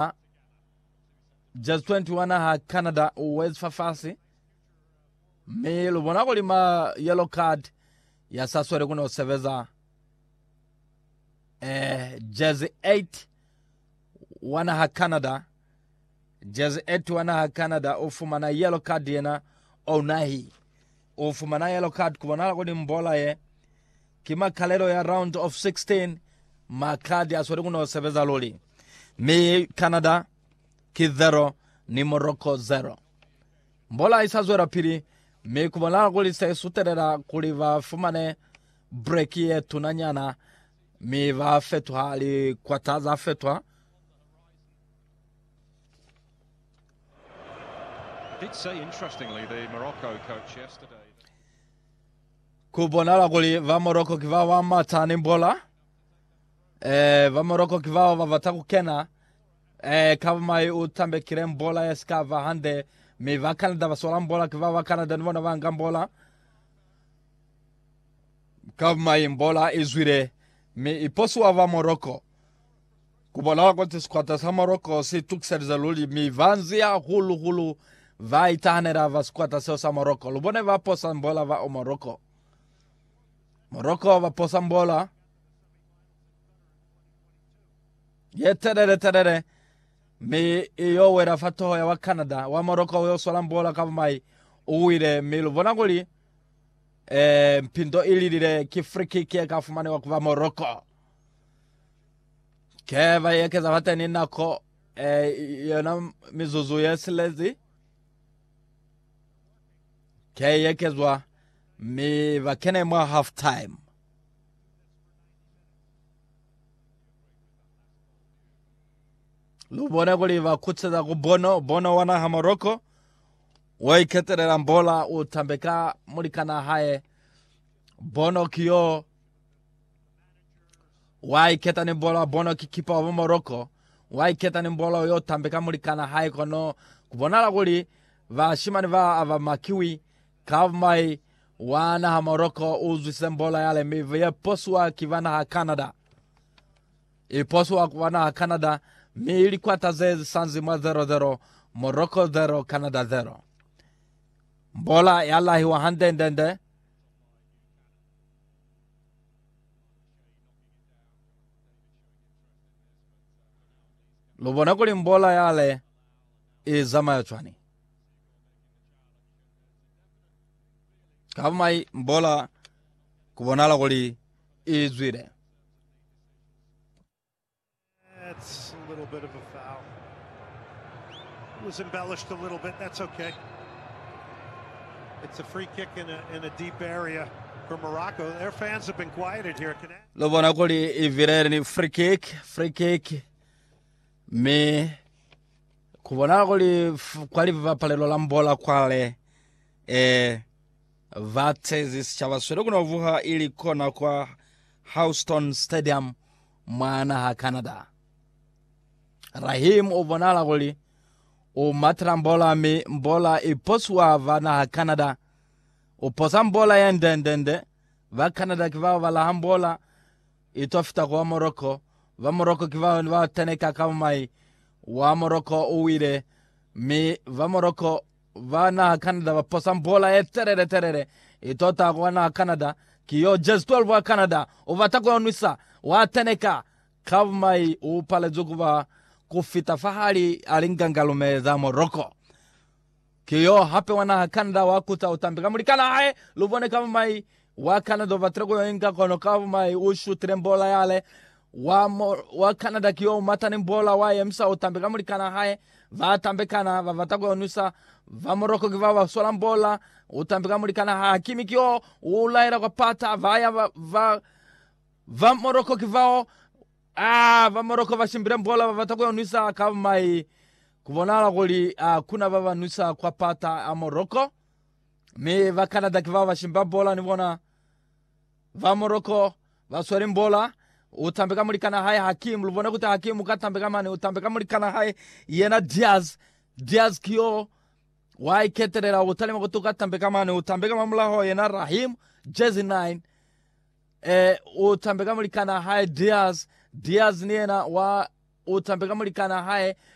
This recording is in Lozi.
A Jazz 21 ha Canada West fafasi mi lu bona kuli ma yellow card ya sa swele ku no sebeza eh Jazz 8 wana ha Canada Jazz 8 wana ha Canada o fumana yellow card yena o nahi o fumana yellow card ku bona kuli mbola ye ki makalelo ya round of 16 ma card ya swele ku no sebeza luli Mi Canada ki 0 ni Morocco 0. Mbola isa zwela pili, mi kubonala kuli se sutelela kuli ba fumane breki ye tuna nyana, mi ba fetuha likwata za fetwa. Kubonala kuli ba Morocco ki ba ba mata ni mbola. Eh, ba Morocco ki bao ba bata ku kena. Eh, ka mai u tambekile mbola ya sika ba hande. Mi ba Canada ba sola mbola ki bao ba Canada ni bona ba nga mbola. Ka mai mbola i zwile. Mi i posiwa ba Morocco. Ku bolela kuti sikwata sa Morocco si tukiselize luli. Mi ba nzi hahulu hulu ba itahanela ba sikwata seo sa Morocco. Lu bone ba posa mbola ba o Morocco. Morocco ba posa mbola ye telele telele mi i yo wela fa toho ya wa Canada. Wa Morocco u yo swala mbola ka bumai, u wile mi lu bona kuli eh, mpindo i lilile. Ki free kick ye ka fumanewa ku ba Morocco. Ke ba ekeza fateni nako eh, yona mizuzu ye silezi. Kya eyekezwa mi ba kene mwa half time. Lu bone kuli ba kutseza ku Bono, Bono wa naha Morocco. Wo iketelela mbola u tambeka mulikana hae. Bono kiyo Wa iketa ni bola bono ki kipa wa ba Morocco, wa iketa ni bola yo tambe ka mulikana hae kono ku bonala kuli bashimani ba aba makiwi. Kab Mai wa naha Morocco u zwise bola yale mi ye posiwa ki ba naha Canada. I posiwa ku ba naha Canada mi i likwata ze zisanzi mwa 0-0, Morocco 0, Canada 0. Bola ya lahiwa handendende. Lu bona kuli mbola yale i zamaya cwani. Kabumai mbola ku bonala kuli i zwile. Lu bona kuli i vilele ni free kick, free kick. Mi ku bona kuli f- kwa livapalelo la mbola kwale eh, va tezi sichaba swele kuno vuha ili kona kwa Houston Stadium Mwa naha Canada, Raheem u bonahala kuli u matela mbola mi mbola i posiwa ba naha Canada. U posa mbola ye ndendende. Ba Canada ki bao ba laha mbola i to fita kwa Morocco. Ba Morocco ki bao ne ba teneka kaba mai wa Morocco u wile, mi ba Morocco Ba naha Canada ba posa mbola ye telele telele i tota ku wa naha Canada. Ki yo jezi 12 wa Canada u bata ku yo nwisa. Wa teneka ka bumai u palezwi ku ba ku fita fahali a li ngangalume za Morocco. Ki yo hape wa naha Canada wa kuta u tambi ka mulikana hae. Lu bone ka bumai Wa Canada ubatile ku yo inga kono ka bumai u shutile mbola yale. Wa, mo, wa Canada ki yo umata ni mbola wa yemisa utambe ka mulikana hae. Ba tambekana babata ku yo nwisa. Ba Morocco ki bao ba sola mbola utambe ka mulikana hae. Hakimi ki yo u laela kwa pata, ba ya ba, ba, ba Morocco ki bao. Ah, ba Morocco ba shimbile mbola babata ku yo nwisa ka bumai. Ku bonahala kuli a kuna ba ba nwisa kwa pata a Morocco. Mi ba Canada ki bao ba shimba bola ni bona. Ba Morocco ba sweli bola. U tambe ka mulikana hae Hakim. Lu bone kuti Hakim uka tambe ka mane. U tambe ka mulikana hae yena Diaz. Diaz ki yo wa iketelela. U talima kuti uka tambe ka mane. U tambe ka mamulaho yena Rahim, jersey 9. E, u tambe ka mulikana hae Diaz. Diaz ni yena wa u tambe ka mulikana hae